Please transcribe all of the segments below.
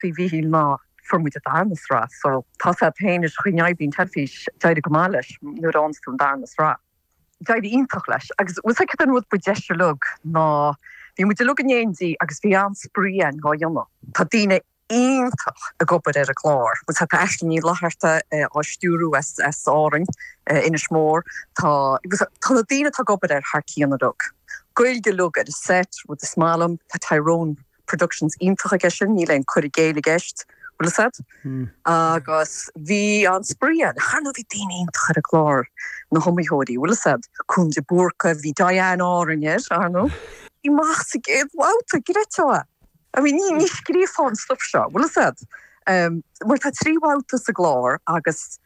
faoi Mhíchíl ná fuair muid an darna sraith so tá a fhios a'd féin an chaoi a mbíonn teilifís d'éirigh go maith leis anuraidh ansin an darna sraith d'éirigh iontach leis agus bhfuil fhios a'd an rud ba deise uilig ná bhí muid uilig in éindí agus bhí an-spraoi ann dhá dhéanamh tá daoine iontach ag obair ar an gclár bhfuil fhios a'd Aisling Ní Fhlaithearta á stiúrú as as Árainn Inis Mór tá bhfuil fhios a'd tá na daoine atá ag obair air thar cionn uilig Gaeilge uilig ar an set rud is maith liom tá Tyrone productions iontach aige sin, níl aon cur i gcéill i gceist, bhfuil fhios a'd? Agus bhí an-spraoi ann, ar ndóigh bhí daoine iontach ar an gclár, na hiomaitheoirí, bhfuil fhios a'd? Colm de Búrca, bhí Diane Árainn air, ar ndóigh. Amach sa gcéad bhabhta, an créatúr. I mean, ní scríobhfá an stuif seo, bhfuil fhios a'd? Mar tá trí bhabhta sa gclár agus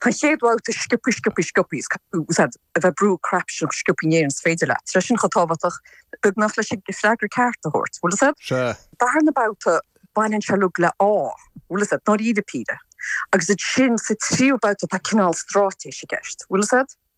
An chéad bhabhta Sciopthaí Sciopthaí Sciopthaí bhfuil fhios a'd a bheith ag brú an cnaipe sin chomh sciopthaí in Éirinn is féidir leat, is é sin chomh tábhachtach beagnach leis an freagra ceart a thabhairt, bhfuil fhios a'd? Sea. Darna babhta baineann sé uilig le ádh, bhfuil fhios a'd, nár íde píde agus ansin sa tríú babhta tá cineál stráitéis i gceist, bhfuil fhios a'd?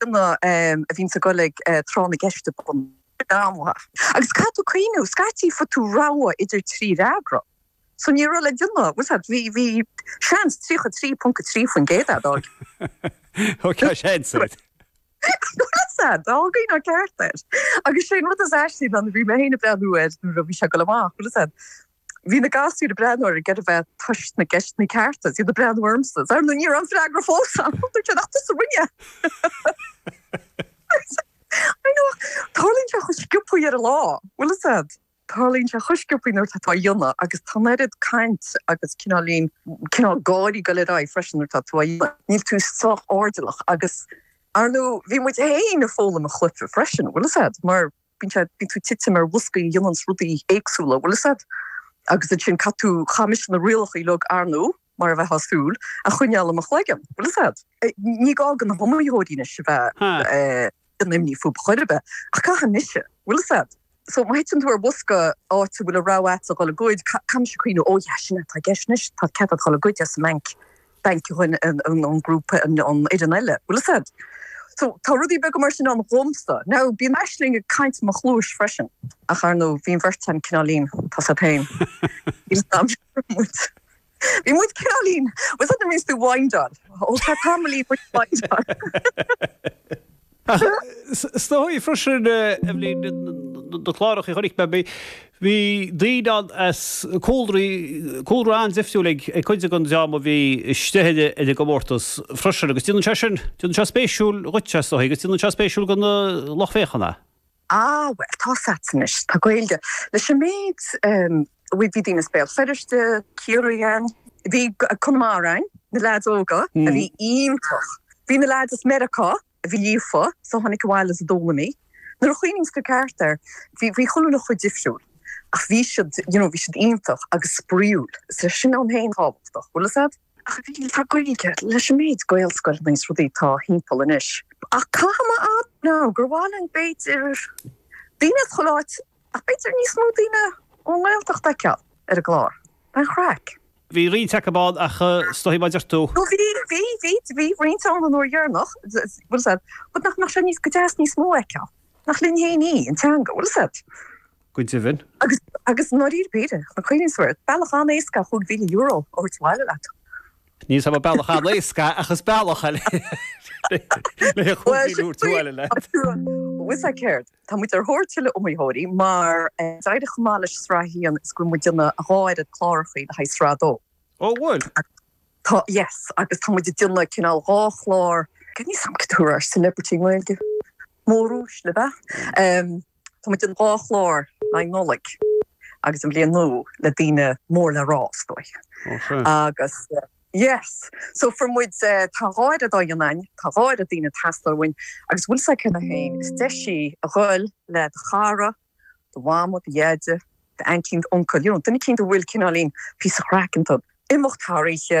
duine a bhíonns ag dul ag Tráth na gCeist i bun ama. Agus caithfidh tú cuimhniú. Scaití fuair tú rogha idir trí fhreagra. So ní raibh le déanamh, bhfuil fhios a'd, bhí, bhí seans 33.3% a'd. Thug sé seans ort, bhfuil fhios a'd, go bhfaighfeá ceart é. Agus sé an rud is aistí ná bhí mé féin ag breathnú air nuair a bhí sé ag dul amach, bhfuil fhios a'd, Bhí na gasúir ag breathnú air ag iarraidh a bheith ag tomhais na gceisteanna ceart, is iad ag breathnú ormsa, is ar ndóigh ní raibh an freagra fós a'm! Dúirt sé, Nach tusa a rinne é? I know! Tarlaíonn sé chomh sciopthaí ar an lá, bhfuil fhios a'd, tarlaíonn sé chomh sciopthaí nuair atá tú á dhéanamh agus tá an oiread caint agus cineáilín, cineál gáirí ag dul ar aghaidh freisin nuair atá tú á dhéanamh, níl tú sách airdeallach agus, ar ndóigh, bhí muid féin ag foghlaim an chluife freisin, bhfuil fhios a'd, mar. bíonn sé, bíonn tú ag titim ar bhoscaí a dhéananns rudaí éagsúla, bhfuil fhios a'd, agus ansin caithfidh tú, caithfidh mise na rialacha uilig arnú, mar a bheifeá ag súil, a choinneáil i mo chloigeann, bhfuil fhios a'd, ní gá do na hiomaitheoirí anois a bheith in imní fúb chor ar bith, ach caithfidh mise, bhfuil fhios a'd, so má thiteann tú ar bhosca áit a bhfuil an rogha a'at a dhul ag goid, caithfidh mise cuimhniú, ó yeah, sin é atá i gceist anois, tá cead a'at dhul ag goid as an mbainc. bainc a bhain an grúpa nó an duine eile, bhfuil fhios a'd. So, tá rudaí beaga mar sin ann dhomsa. Now, bíonn Aisling ag caint i mo chluais freisin, ach ar ndóigh, bhí an bheirt a'inn cineáilín, tá a fhios a'd féin. Níl a fhios a'm an raibh muid. Bhí muid cineáilín. Was that the means to wind on? Ó, tá tamall í muid wind on. Ach is dóichí freisin i mbliana, na cláracha a chonaic mé, bhí daoine ann as cúlraí, cúlra an-difriúil ag cuid den dream a bhí istigh ar an gcomórtas freisin agus déanann sé sin, déanann sé spéisiúil dhuit, is dóichí, agus déanann sé spéisiúil do na lucht féachana. Ah bhuel tá's agat anois, tá an Ghaeilge leis an méid a bhfuil, bhí daoine as Béal Feirste, Ciarraí ann, bhí Conamara ann, na leaids óga a bhí iontach, bhí na leaids as Meiriceá a bhí líofa is a tháinig abhaile as a dtuairimí, nuair a chuimhníonns tú ceart air bhí bhí chuile rud chomh difriúil ach bhí siad, you know, bhí siad iontach agus spraíúil, so sin ann féin tábhachtach, bhfuil a fhios agat? Tá Gaeilge leis an méid Gaelscoileanna is rudaí atá thimpeall anois. Ach caithfidh mé a admháil gur mhaith linn b'fhéidir daoine a chur áit ach b'fhéidir níos mó daoine ón nGaeltacht a fheiceáil ar an gclár. An chraic. Bhí roinnt acu ann ach is dóigh mar a deir tú. Bhí, bhí, bhí, bhí roinnt ann an uair dheireanach, bhfuil a fhios agat, but nach mbeadh sé níos, go deas níos mó a fheiceáil. Nach linn féin í, an teanga, bhfuil a fhios agat. Go deimhin. Agus, agus i ndáiríre péire, chun cuimhneamh air, bealach an-éasca chúig mhíle euro a thabhairt abhaile leat. Ní hé bealach an-éasca ach is bealach eile é le chúig mhíle euro a thabhairt abhaile leat. Bhuel, sea, céard? Tá muid ar thóir tuilleadh iomaitheoirí mar d'éirigh chomh maith leis Sraith a hAon is go bhfuil muid ag déanamh dhá oiread clárachaí le haghaidh Sraith a Dó. Ó, bhuel. Tá, yes, agus tá muid ag déanamh cineál dhá chlár, níl a fhios agam cad a thabharfá ar celebrity i nGaeilge, móruaisle, ab ea? Tá muid ag déanamh dhá chlár le haghaidh Nollaig agus an Bhliain Nua le daoine mór le rá is dóigh agus yes so fáir muid tá dhá oiread ag dul ann tá dhá oiread daoine teastáil uainn agus bhfuil a fhios agat cheana féin is deis í a dhul le do chara, do mhama, do dheaide, d'aintín, d'uncail, you know duine eicínt a bhfuil cineáilín píosa craic iontu, imeacht thar oíche,